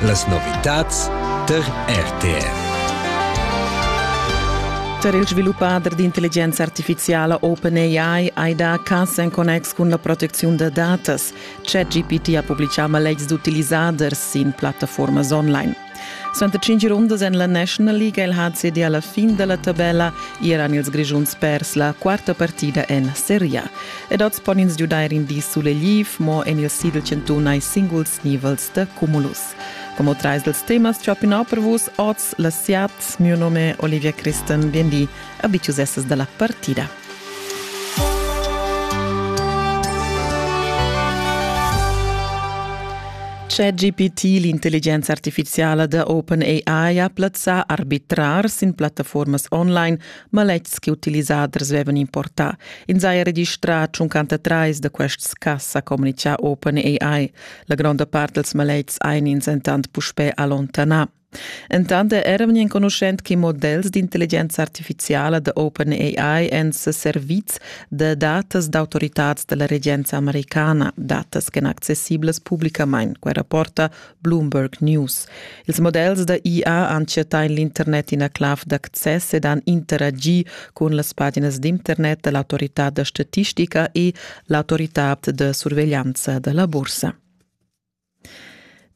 Las novitads tar RTR. Per il sviluppader d'intelligenza artificiala OpenAI hai dà cas en connex cun la protecziun da datas. ChatGPT ha publitgà maletgs d'utilisaders sin plattaformas online. Suenter tschintg rundas en la National League ha il HCD alla fin dalla tabella eran ils Grischuns pers la quarta partida en Serie A. Ed oz pon ins giudair in di sulegliv, mo en il Sidl Chantun hai singuls nivels da cumulus. Como trais dels temas ciapinau per vus oz la siat, mio nome Olivia Christen, biendi, a bicius essas dalla partida. ChatGPT, l'intelligenza artificiala da OpenAI, ha plazzà arbitrars sin plattaformas online maletgs che utilisaders avevan importà. Ins ha registrà 53 da quests cas, ha communitgà OpenAI. La gronda part dels maletgs ein ins entant puspè allontanà. Entant era vegnì enconuschent che models d'intelligenza artifiziala da OpenAI èn seservids da datas d'autoritads da la regenza americana, datas ch'èn accessiblas publicamain, quai rapporta Bloomberg News. Ils models da IA han chattà en l'internet ina clav d'access ed han interagi cun las paginas d'internet da l'autorità da statistica e l'autorità da surveglianza da la bursa.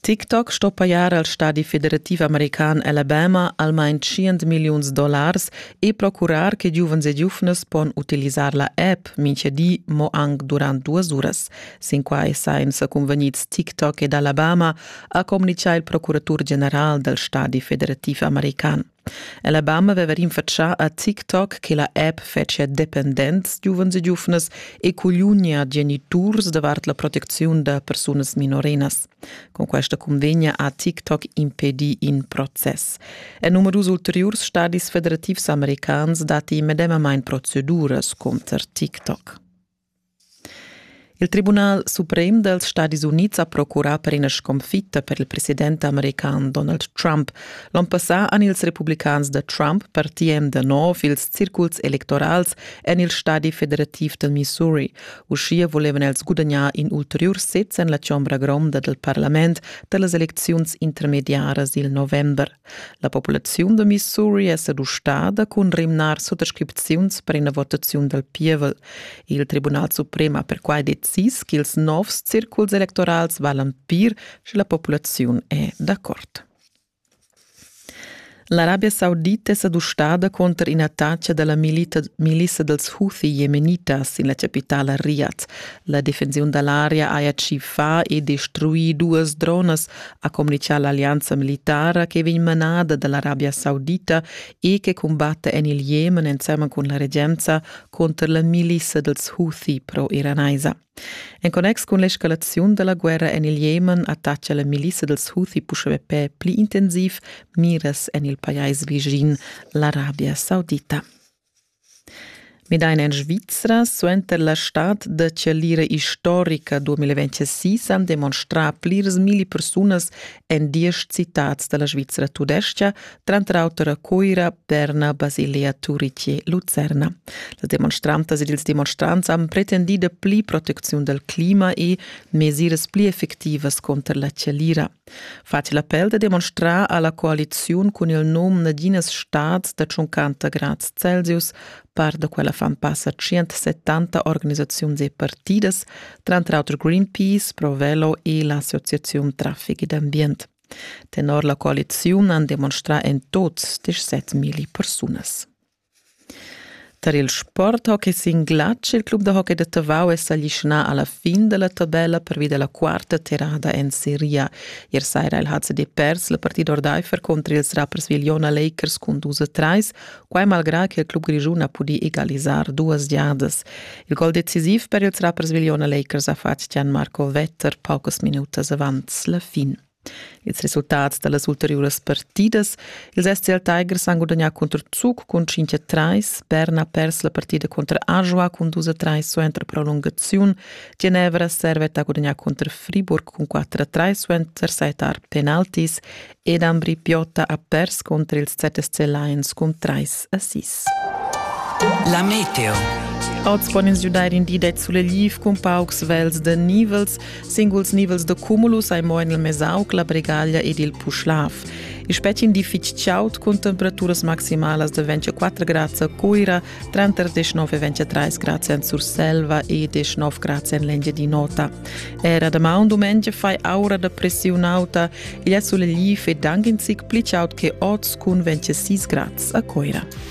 TikTok sto pajar al stadi federativ american Alabama almain tschient milliuns dollars e procurar che giuvens e giuvnas pon utilisar la app mintga di mo anc durant duas uras. Sin quai sajan sa cunvegnids TikTok ed Alabama, ha communitgà il procuratur general dal stadi federativ american. Alabama veva rinfatschà a TikTok che la app fetschia dependents giuvens e giuvnas e cugliunia geniturs davart la protecziun da persunas minorenas. Con questa convegna ha TikTok impedì in process. En numerus ulteriurs stadis federativs americans datti medemamain proceduras contro TikTok. Il tribunal suprem dals Stadis Unids ha procurà per ina sconfitta per il president american Donald Trump. L'onn passà han ils republicans da Trump per TM da nov ils circuls electorals en il stadi federativ del Missouri. Uschia volevan els gudagnar in ulteriur sez en la chombra gronda del parlament per las elecziuns intermediaras il november. La populaziun da Missouri è seduschada cun rimnar suttascripziuns per ina votaziun dal pievel. Il Tribunal suprem ha perquai decis ch'ils novs circuls electorals valan pir, sche la populaziun è d'accord. L'Arabia Saudita è s'adustada cunter in'attacca da la milita, milissa dals Houthi jemenitas sin la chapitala Riyadh. La defensiun da l'area haja tschiffà e destruì duas dronas, ha communichà l'allianza militara che vegn manada da l'Arabia Saudita e che cumbatta en il Jemen ensemen cun la regenza cunter la milissa dals Houthi pro-iranaisa. En connex cun l'escalaziun da la guerra en il Jemen attacca la milissa dals Houthi Pushebepè pli intensiv miras en il pajais vischin, l'Arabia Saudita. Midain en Svizra suenter la stad da chalira istorica 2026 han demonstrà plirs milli persunas en diesch citads da la Svizra tudestga, tranter auter a Cuira, Berna, Basilea, Turice, Lucerna. Las demonstrantas ed ils demonstrants han pretendì dapli protecziun dal clima e mesiras pli effectivas cunter la chalira. Facil appel da demonstrar alla coaliziun cun il num naginas stads da 50 grads Celsius par da quella fan passa 170 organisaziuns e partidas, tranter auter Greenpeace, Provello e l'Associazione Traffic ed Ambient. Tenor la coaliziun han demonstrà en tots 17.000 persunas. Tar il sporthockey sin glatsch il club da hockey da Tavau è s'aglischnà a la fin da la tabella pervi da la quarta terrada en seria. Ier saira il HCD pers la partida ordaifer contro ils rappers Vigliona Lakers cun dus a trais, quai malgrà che il club grischun ha pudì egalisar duas giadas. Il gol decisiv per ils rappers Vigliona Lakers ha fatg Gian Marco Vetter paucas minutas avant la fin. Ils resultats da las ulteriuras partidas. Ils SCL Tigers han gudagnà contro Zug cun 5 a 3. Berna ha pers la partida contro Ajoa cun 2 a 3 suenter prolungaziun. Genevra Servet ha gudagnà contro Friburg cun 4 a 3 suenter setar penaltis. Ed Ambri Piotta ha pers contro ils ZSC Lions cun 3 a 6. La Meteo. Oz pon ins giudair in di da sulegl cun paucs vels da nivels. Singuls nivels da cumulus ei mo en il Mesauc, la Bregaglia ed il Puschlav. Il spetgin di fitg chaud cun temperaturas maximalas de 24 grads a Cuira, tranter 19 e 23 grads en Surselva e 19 grads en l'Engiadin'Ota. Era damaun dumengia fai aura da pressiun auta, igl è sulegli e dang in zic pli chaud che oz cun 26 grads a Cuira.